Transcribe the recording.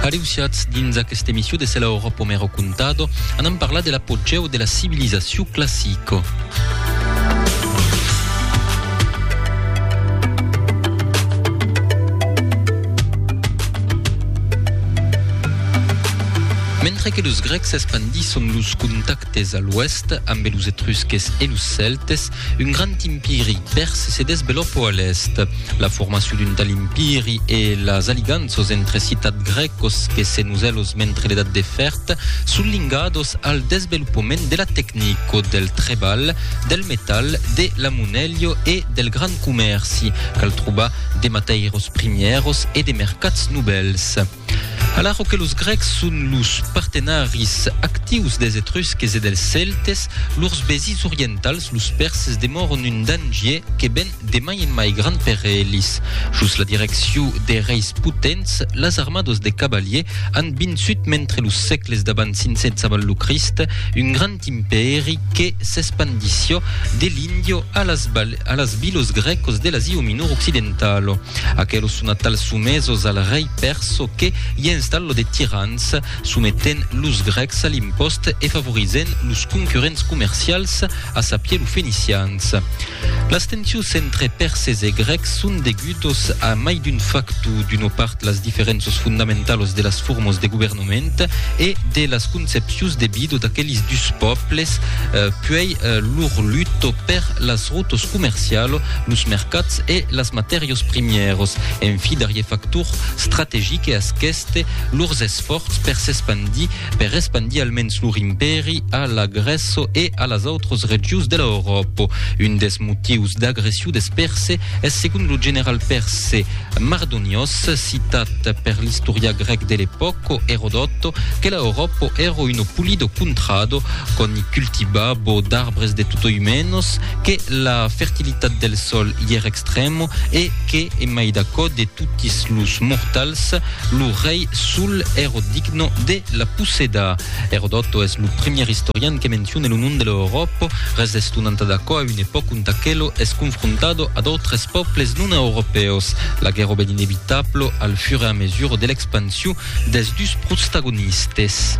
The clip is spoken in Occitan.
Areusiatz dins aquesta emissió de Cela Oro Pomero Contado, anam parlar de l'apogeu de la civilizacion classica. Mentre que los Grecs espandisson los contactes a l'oèst ambe los Etrusques e los Celtes, Un grand impiri pèrse se desvelopò a l'èst. La formacion d'un tal impiri e las aliganços entre citats grècos que se noselos mentre l'Edat de Fèrd son lingados al desvelopament de la tecnico, del trebalh, del metal, de la monelho e del grand comèrci, cal trobar de matèiros primièros e de mercats novèls. Alara que los grècs son los partenaris actius des etrusques e dels cèltes, lors vesins orientals, los pèrses, demòron un dangier que ven de mai en mai grand per elis. Jos la direccion de reis potents, las armados de cavaliers an vinçut mentre los sègles d'abans 500 avant lo Crist un grand impèri que s'espandissió de l'Índio a las a las vilos grècos de l'Asia Minor occidentalo. Aquelos son atals somesos al rei perso que i installo de tirans, sometent los grècs a l'impost e favorizent los concurrents comercials, a sapier lo fenicians. Las tensions entre perses e grècs son degudos a mai d'un factu, d'una part las diferenças fondamentalas de las formas de governança, moment e de las concepcions de vida d'aqueles dus pòbles, puèi lor luta per las rotas comercialas, los mercats e las matèrias primièras. En fi, darrier factor strategic e asquèste, lors esfòrts per s'espandir, per espandir almens lor impèri a la Grèça e a las autras regions de l'Euròpa. Un dels motius d'agression dels Perse es segon lo general perse, Mardonios, citat per l'istorian grèc de l'epòca, Erodòto, que la Euròpa èra un pulido contrado, qu'òni cultivabo d'arbres de tutoi menos, que la fertilitat del sòl i èra extrèma e que, en mai d'aquò, de totis los mortals, lo rei sol èra digno de la possedar. Erodòto es lo primièr istorian que menciona lo nom de l'Euròpa, resestonant d'aquò a un epòca D'aquelo es confrontado a d'autres pòbles non europèus. La guèrra ben inevitablo al fur e a mesura de l'expansion des dus protstagonistes.